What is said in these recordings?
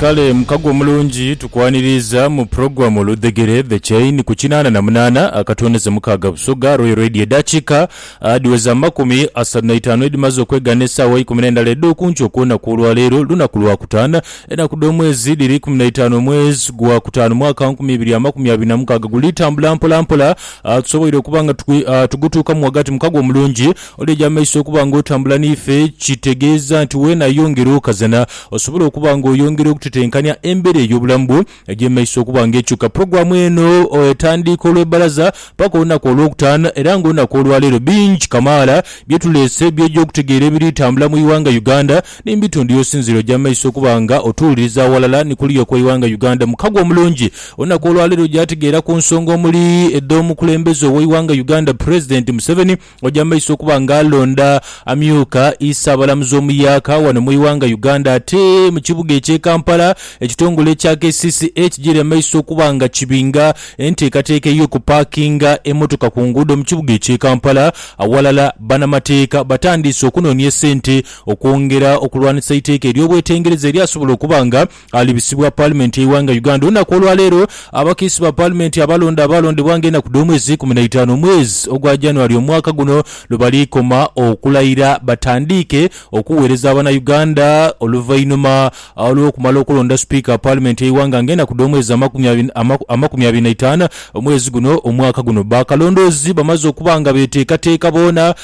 Kale mukago omulungi tukwaniriiza mu pulogulamu Oludhegere, The Chain, ku kinaana na munaana akatondeze mukaaga Busoga Royal Radio edaakiika adhiweza mu makumi asatu na itaanu edhimaze okwegana esaawa eikumi n'endala edh'okunkyo okw'olunaku olwaleero lunaku Lwakutaano. Enaku dh'omwezi dhiri ikumi na itaanu omwezi gwa kutaano mwaka wa nkumi ibiri amakumi abiri na mukaaga. Guli tambula mpola mpola tusoboire okuba nga tugutuukamu ghagati mukago omulungi. Oli eja maiso okuba nga otambula n'ife kitegeeza nti weena yongera okazana osobole okuba nga oyongera okutetenkania embera ey'obulamu bwo egy'emaiso okuba nga ekyuka. Pulogulaamu eno etandiika olw'ebbalaza paka olunaku olw'okutaano era nga olunaku olwaleero bingi kamaala byetuleese by'oja okutegeera ebiri tambula mu ighanga Uganda ni mubitundu y'osinziire oja maiso okuba nga otuwuliriza awalala ni kuliya okw'eighanga Uganda. Mukago omulungi olunaku olwaleero oja tegeera ku nsonga omuli edh'omukulembeze ow'eighanga Uganda Pulezidenti Museveni, Oja maiso okuba nga alonda amyuka Isaabalamuzi omuyaaka wano mu iwanga Uganda ate mu kibuga ekye Kampala ekitongole ekya kcca kigiri emaiso okuba nga kibinga enteekateeka ey'okupakinga emotoka ku nguudo mu kibuga ekye Kampala awalala banamateeka batandiise okunoonia esente okwongera okulwanisa eiteeka ery'obwetengereza eryasobola okuba nga alibisibwa Paalimenti y'eighanga Uganda olunaku olwaleero. Abakiisi ba Paalimenti abalonde abaalondebwa nga enaku dh'omwezi ikumi na itaanu omwezi ogwa January omwaka guno lwebali koma okulayira batandiike okuweereza abana Uganda oluvainhuma lw'okumala okulonda Sipiika Paalimenti y'eighanga nga enaku dh'omwezi amakumi abiri na itaanu omwezi guno omwaka guno. Bakalondoozi bamaze okuba nga beteekateeka boona.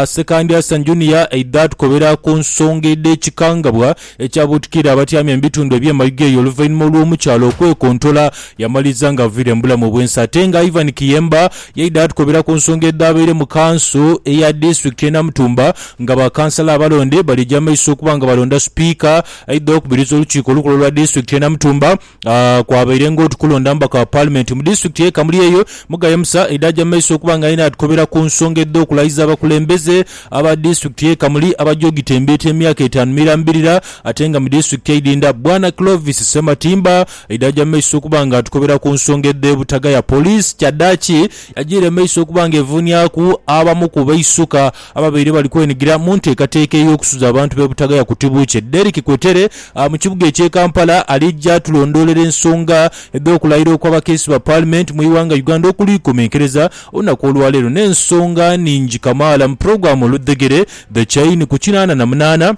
Ssekandi Hassan Junior aidha tukobera ku nsonga edh'ekikangabwa. Ekyabuutikira abatyamye mu bitundu eby'e Mayuge eyo oluvainhuma olw'omukyala okwekontola yamaliriza nga aviire mu bulamu bw'ensi ate nga Ivan Kiyemba yaidha atukobera ku nsonga edhaabaire mu kanso eya disitulikiti y'e Namutumba nga bakansala abalonde bali egy'amaiso okuba nga balonda sipiika aidha okubiriza olukiiko olukulu olwa disitulikiti y'e Namutumba Ah, kwabaire ng'oti kulonda mubaka wa Paalimenti mu disitulikiti y'e Kamuli eyo, Mugaye Musa Ida aja mu maiso okuba nga yenha atukobera ku nsonga edh'okulayiza abakulembeze aba disitulikiti y'e Kamuli abaja ogitembeeta emyaka etaanu mirambirira ate nga mu disitulikiti eidhindha. Bwana Clovis Sematimba Ida aja mu maiso okuba nga atukobera ku nsonga edh'ebutagaya poliisi kyadhaaki yajiire mu maiso okuba nga evuuniaku abamu ku baisuka Ababaire bali kwenigira mu nteekateeka ey'okusuza abantu b'e Butagaya ku Tibuukye, Derrick Kwetere mu kibuga eky'e Kampala alija tulondoolera ensonga edh'okulayira okw'abakiisi ba Paalimenti mu ighanga Uganda okuliikomenkereza olunaku olwaleero n'ensonga nhingi kamaala mu pulogulaamu Oludhegere, The Chain, ku kinaana na munaana.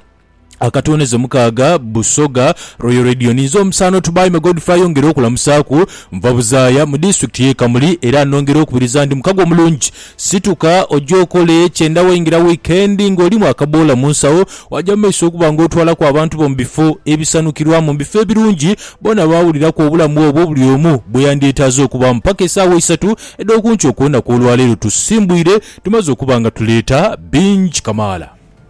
Akatonezo mukaaga Busoga Royal Radio ninze omusaano Tubaime Godfrey yongera okulamusaaku nva buzaaya mu district ye Kamuli era nongera okubiriza ndi mukago omulungi situka oje okole kyenda waingira weekend nga olimu akaboola munsawo waja mumaiso okuba nga otwalaku abantu bo mubifo ebisanukirwamu mubifo ebirungi bona bawuliraku obulamu obwo buli omu bweyandyetaaze okubaamu paka esaawa isatu edhokunkyo kwonaku olwaleero tusimbwire tumaze okuba nga tuleeta bingi kamaala.